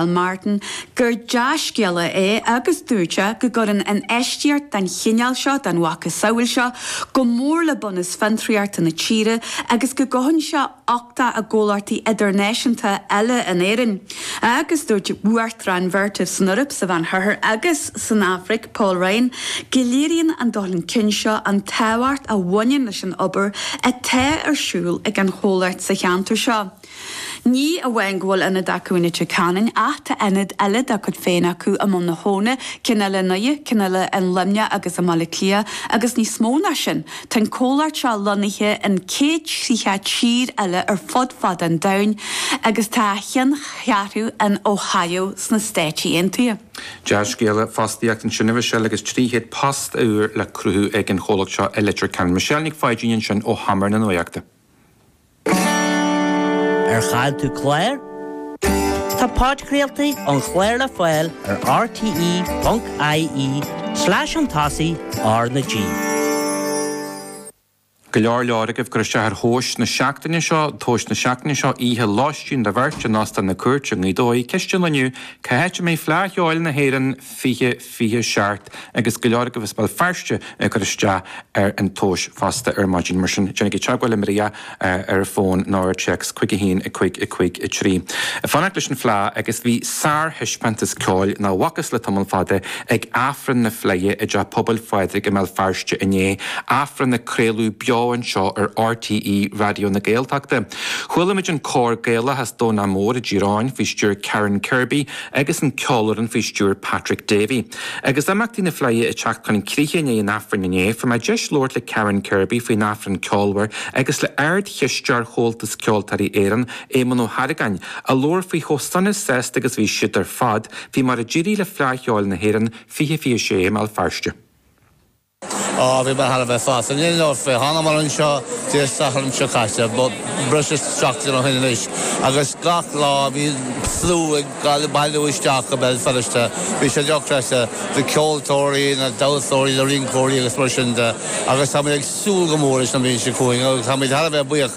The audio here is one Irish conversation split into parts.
Mhícheál Martin gur dea-scéala é agus dúirt sé go gcuireann infheistíocht den chineál seo, den mhacasamhail seo, go mór le bunús fiontraíochta na tíre agus go gcothaíonn sé uchtach i gcomhlachtaí idirnáisiúnta eile in Éirinn. Agus dúirt Uachtarán Vertiv san Eoraip, sa Mheánoirthear agus san Afraic, Paul Ryan, go léiríonn an dul chun cinn seo an tábhacht a bhaineann leis an obair atá ar siúl ag an chomhlacht sa cheantar seo. Ní amháin go bhfuil ionad acu in Leitir Ceanainn ach tá ionad eile dá gcuid féin acu i mBun na hAbhann, ceann eile in Uidhe, ceann eile i nLuimneach agus i mBaile Átha Cliath agus níos mó ná sin, tá an comhlacht seo lonnaithe in 130 tír eile ar fud fad an domhain agus tá a cheanncheathrú in Ohio sna Stáit Aontaithe. Dea-scéala fostaíochta ansin a Mhichelle agus 300 post úr le cruthú ag an chomhlacht seo i Leitir Ceanainn. Michelle Nic Pháidín, ansin ó sheomra na nuaíochta. Ar chaill tú clár? Tá podchraoltaí an chláir le fáil ar rte.ie slash an tosaigh R na G. Go leor leor agaibh ag cur isteach ar thomhas na seachtaine seo, tomhas na seachtaine seo, oíche lóistín do bheirt in Óstán na Cúirte i nGaoth Dobhair. Ceist inniu, cá háit a mbeidh Fleadh Cheoil na hÉireann 20. 27, agus go leor agaibh as Béal Feirste ag cur isteach ar an tomhas fosta ar maidin. Mar sin, déanaigí teagmháil le Maria ar fón nó ar téacs chuig 1 553. Ag fanacht leis an Fhleadh agus bhí sárthaispeántas ceoil nach bhfacthas le tamall fada ag Aifreann na Fleidhe i dTeach Pobail Phádraig i mBéal Feirste inné, Aifreann a craoladh beo anseo ar RTÉ Raidió na Gaeltachta. Chuala muid an cór Gaelach as Domhnach Mór i dTír Eoghain faoi stiúir Karen Kirby, agus an ceolfhoireann faoi stiúir Patrick Davey. Agus imeachtaí na Fleidhe ag teacht chun críche i ndiaidh an Aifrinn inné, fuair mé deis labhairt le Karen Kirby faoin Aifreann ceolmhar agus le Ard-Chisteoir Chomhaltas Ceoltóirí Éireann, Éamonn Ó hArgáin, a labhair faoi chomh sona sásta agus a bhí siad ar fad faoi mar a d'éirigh le Fleadh Cheoil na hÉireann 2026 i mBéal Feirste. Á, bhí mé thar a bheith sásta. Ní leor fé. Tháinig mé anseo Dé Sathairn seo caite, breis is seachtain ó shin anois, agus gach lá bhí slua ag bailiú isteach go Béal Feirste. Bhí sé dochreidte, na ceoltóirí, na damhsóirí, na rinceoirí agus mar sin de, agus táimid ag súil go mór leis an mbliain seo chugainn, agus táimid thar a bheith buíoch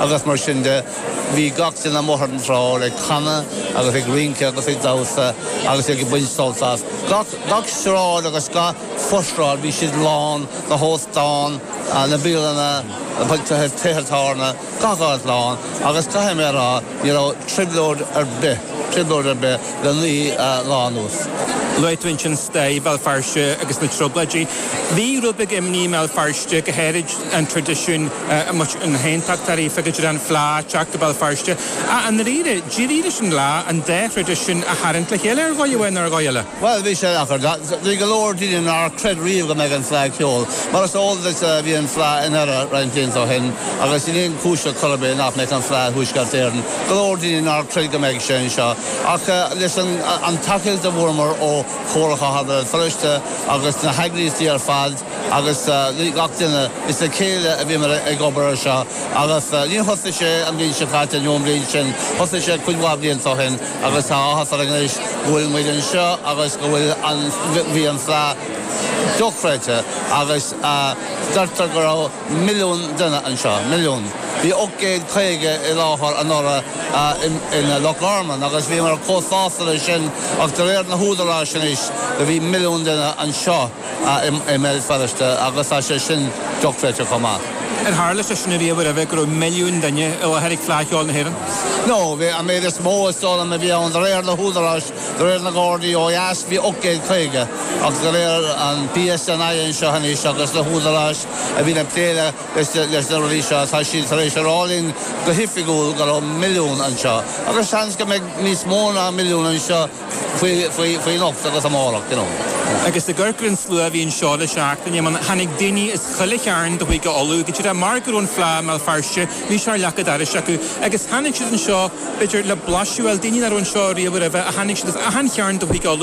agus mar sin de, bhí gach duine amuigh ar an tsráid ag canadh agus ag rince agus ag damhsa agus ag baint sult as. Gach sráid agus gach foshráid bhí siad lán, na hóstáin, na bialanna, tithe tábhairne, gach áit lán agus caithfidh mé a rá ní raibh trioblóid ar bith, trioblóid ar bith le naoi lá anuas. Luaigh tú ansin stair Bhéal Feirste agus na Trioblóidí. Bhí rud beag imní i mBéal Feirste go háirid. an traidisiún na hAontachtóirí, Feictear ar an Fhleadh, Teachta Bhéal Feirste, ach i ndáiríre, d'éirigh leis an Fhleadh an dá thraidisiún a tharraingt le chéile, ar dhóigh amháin nó ar dhóigh eile. Bhuel, bhí sé deacair. Bhí go leor daoine nár chreid riamh go mbeadh an Fleadh Cheoil. Mar is eol duit, bhí an Fleadh i nDoire roinnt blianta ó shin agus níl aon chúis ar chor ar bith nach mbeadh an Fleadh i dTuaisceart Éireann. Go leor daoine nár chreid go mbeadh sé anseo. Ach leis an tacaíocht a fuaireamar ó Chomhairle Chathair Bhéal Feirste agus na heagraíochtaí ar fad, agus gach duine. Is le chéile a bhíomar ag obair ar seo agus níor thosaigh sé an bhliain seo caite nó an bhliain sin, thosaigh sé cuid mhaith blianta ó shin agus tá áthas orainn anois go bhfuil muid anseo agus go bhfuil an, bhí an fleadh dochreidte agus deirtear go raibh milliún duine anseo, milliún. Bhí 850,000 i láthair anuraidh i Loch Garman agus bhíomar chomh sásta leis sin ach de réir na húdaráis anois, do bhí milliún duine anseo. i mBéal Feirste agus tá sé sin dochreidte chomh maith. Ar tharla sé sin riamh roimhe, go raibh milliún duine i láthair ag Fleadh Cheoil na hÉireann? No, bhí, an méid is mó, is dóigh liom, a bhí ann, de réir na húdaráis, de réir na nGardaí ó dheas, bhí 850,000, agus de réir an PSNI anseo anois agus na húdaráis a bhíonn ag plé leis na rudaí seo, tá siad tar éis a rá linn go hoifigiúil go raibh milliún anseo, agus seans go mbeidh níos mó ná milliún anseo. faoi anocht agus amárach, you know. Agus i gcúrsaí an tslua a bhí anseo le seachtain, I mean tháinig daoine as chuile chearn de Chúige Uladh, go díreach mar go raibh an Fleadh i mBéal Feirste, bhí sé ar leac an dorais acu agus tháinig siad anseo b'fhéidir le blaiseadh, bhuel daoine nach raibh anseo riamh roimhe a tháinig siad as achan chearn de Chúige Uladh.